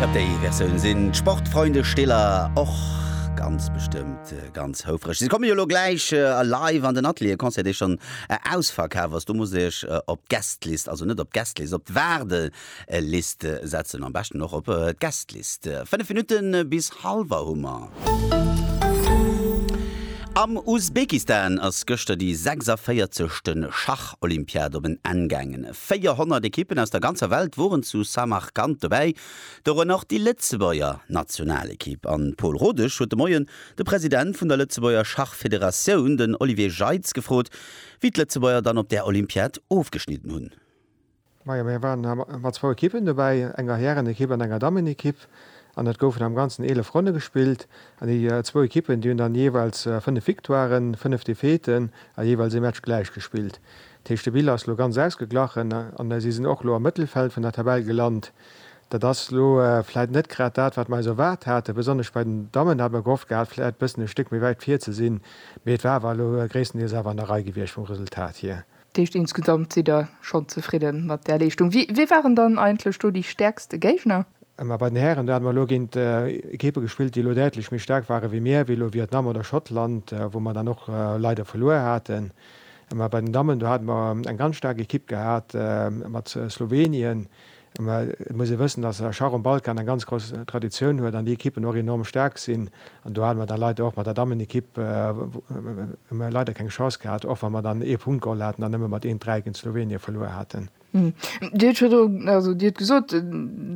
Op déi Versioun sinn d'Sportfreunde Stiller och ganz bestëmmt ganz houfreg. Si komme jo elo gläich live an den Atelier, e Concert dee schonn ausverkaf ass. Do musst Der Iech op d'Gästlist, also net op d'Gästelist, op d'Waardelist setzen. Am beschten och op d'Gästlist. Fënnef Minutte bis halwer hu mer. Am Usbekistan ass gëschter déi 46. Schach-Olympiad op en Enn gaangen. 400 Ekippen aus der ganzer Welt woren zu Samarkand dobäi, dorënner och déi Lëtzebuerger Nationalekipp. An Pol Rodesch huet de Moien de President vun der Lëtzebuerger Schachfederatioun, den Olivier Jeitz gefrot, wéi d'Lëtzebuerger dann op där Olympiad ofgeschnidden hunn. Majo, mir waren mat zwou Ekippen dobäi, enger Härenekipp an enger Dammenekipp, an et goufen am ganzen 11 Ronne gespillt, an déi zwou Ekippen, déi hunn dann jeeweils 5 Victoiren, 5 Defaiten a jeeweils ee Match gläich gespillt. D'Héichte Bille ass elo ganz ausgeglachen an si sinn och elo am Mëttelfeld vun der Tabell gelant. Dat ass elo vläit net grad dat, wat mer eis erwaart haten, besonnesch bei den Dammen hat mer gehofft gehat, vläit e bëssen e Stéck méi wäit vir ze sinn, mee et war awer elo gréisstendeels awer an der Rei gewiescht vum Resultat hier. Dat heescht, insgesamt sidd Der schonn zefridde mat där Leeschtung. Wie waren dann eigentlech do déi stäerkste Géigner? Ma bei den Hären, do hate mer elo géint Ekippe gespillt, déi elo däitlech méi staark ware wéi mir, wéi elo Vietnam oder Schottland, wou mer dann och leider verluer haten. Mä bei den Dammen, do hate mer eng ganz staark Ekipp gehat mat Slowenien. Mä et muss ee wëssen, datt Schach um Balkan eng ganz grouss Traditioun huet an déi Ekippen och enorm staark sinn. An do hate mer da leider och mat der Dammenekipp leider keng Chance gehat, och wa mer dann ee Punkt geholl haten an nëmme mat een Dräi géint Slowenien verluer haten. Dir hutt virdru, also Dir hutt gesot,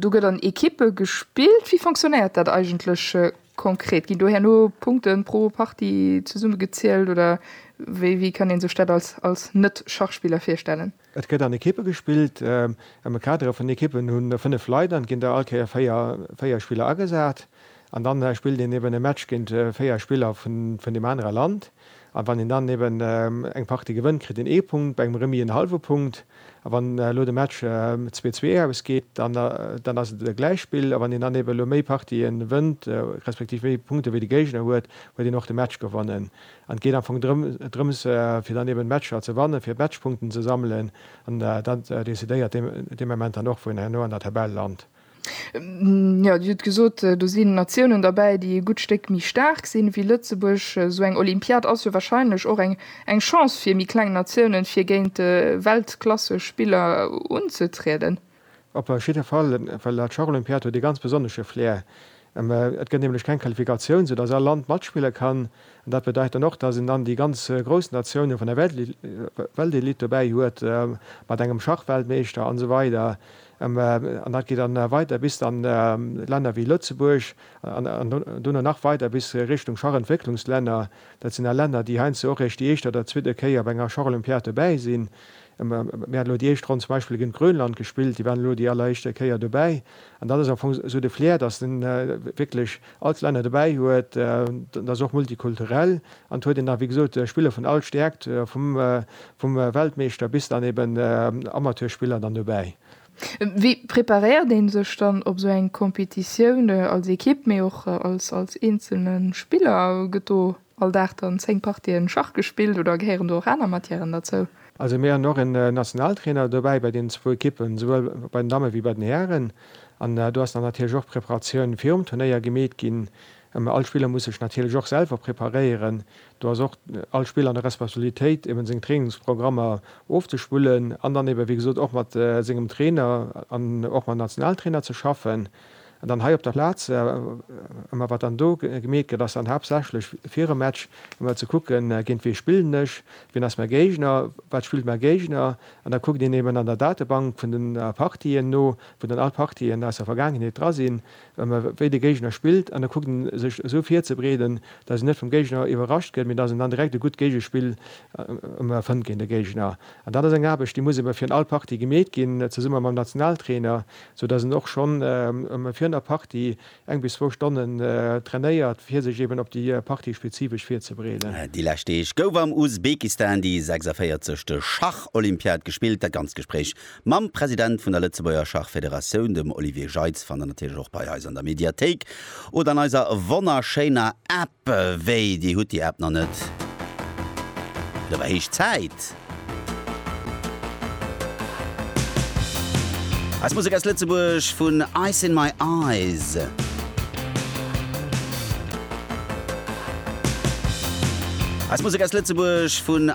do gëtt an Ekippe gespillt. Wéi fonctionnéiert dat eigentlech Konkret, ginn do herno Punkten pro Partie zesumme gezielt oder wéi kann een sech dat als Net-Schachspiller virstellen? Et gëtt an Ekippe gespillt. Am Kader vun Ekippen hu 5 Leit an et ginn der all Kéier 4 Spiller agesat an dann spillt een eben e Match géint 4 Spiller vun deem anere Land. A wann een dann eben eng Partie gewënnt, kritt een ee Punkt, bei engem Remis en hallwe Punkt. A wann elo de Match zwee, zwee ausgeet, dann, dann ass et e Gläichspill. A wann een dann eben elo méi Partië wënnt, respektiv méi Punkte wéi de Géigner huet, huet een och de Match gewonnen. An et geet am Fong drëm, drëms, fir dann eben d'Matcher ze wannen, fir Matchpunkten ze sammelen. An dat decidéiert dee Moment dann och, wou een herno an der Tabell lant. Jo, Dir hutt gesot, do sinn Natiounen derbäi, déi e gutt Stéck méi staark sinn, wéi Lëtzebuerg. Esou eng Olympiad ass jo wahrscheinlech och eng Chance fir méi kleng Natiounen, fir géint Weltklassespiller unzetrieden. Op jidde Fall, well dat Schacholympiad huet e ganz besonnesche Flair. Et gëtt nämlech keng Qualifikatioun, sou datt all Land matspille kann. An dat bedeit dann och, datt een dann déi ganz grouss Natiounen vun der Weltelite dobäi huet, mat engem Schachweltmeeschter an esou weider. An dat geet dann weider bis dann Länner wéi Lëtzebuerg an duerno nach weider bis Richtung Schachentwécklungslänner. Dat sinn all Länner, déi heiansdo och eréischt déi éischt oder zweete Kéier bei enger Schacholympiad dobäi sinn. Mir hat elo déi éischt Ronn zum Beispill géint Grönland gespillt, déi waren elo déi alleréischte Kéier dobäi. An dat ass am Fong esou de Flair, datt en wierklech, all d'Länner dobäi huet, dat ass och multikulturell an et huet een da wéi gesot Spiller vun all Stäerkt, vum Weltmeeschter bis dann eben Amateurspiller dann dobäi. Wéi preparéiert ee sech dann op esou eng Competitioun als Ekipp, mee och als eenzelne Spiller? Gëtt do all Dag dann 10 Partien Schach gespillt oder gehéieren do och aner Matièren derzou? Also mir han och en Nationaltrainer dobäi bei den zwou Ekippen, souwuel bei den Dammen wéi bei den Hären, an do ass dann natierlech och d'Preparatioun virum Turnéier gemeet ginn. All Spiller muss sech natierlech och selwer preparéieren, do ass och all Spiller an der Responsabilitéit eben seng Trainingsprogrammer ofzespullen an dann eben wéi gesot och mat sengem Trainer an och mam Nationaltrainer ze schaffen. An dann hei op der Plaz, ëmmer wat dann do gemeet gëtt, ass dann haaptsächlech virum Match emol ze kucken, géint wee spillen ech, wien ass mäi Géigner, wat spillt mäi Géigner. An da kuckt een eben an der Datebank vun den Partien no, wou dann all d'Partien aus der Vergaangenheet dra sinn, wéi de Géigner spillt. An da kuckt ee sech esou virzebreeden, dass een net vum Géigner iwwerrascht gëtt, mee dass een dann direkt e gutt Géigespill emol fënnt géint de Géigner. An dat ass eng Aarbecht, déi muss ebe fir all Partie gemeet ginn, zesumme mam Nationaltrainer. sou dass en och schonn virun der Partie eng bis zwou Stonnen trainéiert, fir sech eben op déi Partie spezifesch virzebereeden. Déi lescht Deeg gouf am Usbekistan déi 46. Schach-Olympiad gespillt. Dat ganzt Gespréich mam President vun der Lëtzebuerger Schachfederatioun, dem Olivier Jeitz, fannt der natierlech och bei eis an der Mediathéik oder an eiser wonnerschéiner App. Wéi, dir hutt déi App nach net? Da war héich Zäit! Eis Musek aus Lëtzebuerg vun Ice in my eyes. Eis Musek aus Lëtzebuerg vun.